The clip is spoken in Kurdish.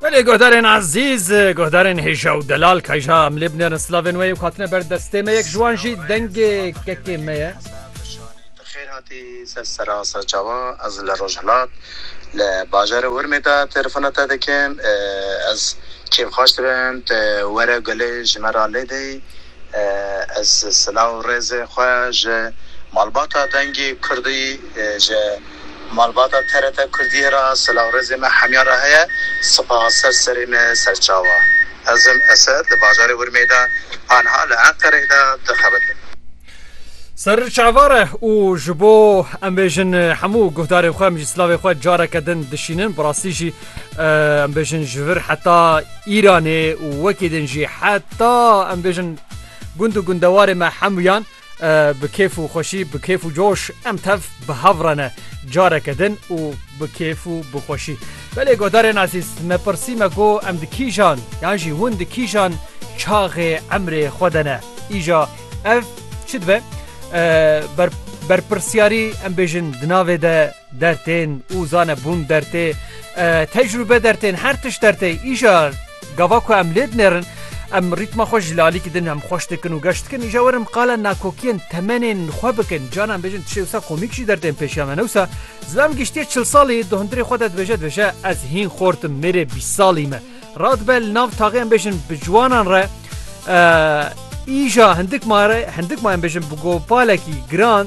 Belê guhdarên ezîz guhdarên hêja û delal kayja em lê binêrin slavên wê û hatine ber destê me yek ji wan jî dengê kekê me ye. Xêr hatî ser sera ser çawa ez li rojhilat li bajarê urmê de telefona te dikim ez kêf xweş dibim tu were gulê ji me re lêdê ez silaw rêzê xwe ji malbata dengê kurdî ji Malbata TRT Kurdiyê re silavrêzê me hemyan re heye. Sipaha ser serê me serçawa. Ez im Esed li bajarê Urmiyê de anha li Enqereyê de dixebitim. Ser çava re û ji bo em bêjin hemû guhdarên xwe em jî silavê xwe careke din dişînin. Bi rastî jî em bêjin ji vir heta Îranê û wekî din jî heta em bêjin gund û gundewarê me hemûyan. Bi kêf û xweşî, bi kêf û coş em tev bi hev re ne careke din û bi kêf û bi xweşî. Belê guhdarên ezîz, me pirsî me got em di kîjan yan jî hûn di kîjan çaxê emrê xwe de ne? Îja ev çi dibe? Berpirsyarî em bêjin di navê de. Dertên û zanebûn dertê, tecrûbe dertên, her tişt dertê. Îja gava ku em lê dinêrin, em rîtma xwe ji lalî kidin, em xweş dikin û geş dikin. Îja werin qala nakokiyên temenên xwe bikin. Canan bêjin tu şêwsa komîk jî dertên pêşiya me ne wisa. Zilam giştiye çil salî, di hundirê xwe de dibêje dibêje ez hîn xort im, mêrê bîst salî me. Radibe li nav taxê em bêjin bi ciwanan re îja hindik ma re hindik ma em bêjin bi gopalekî giran,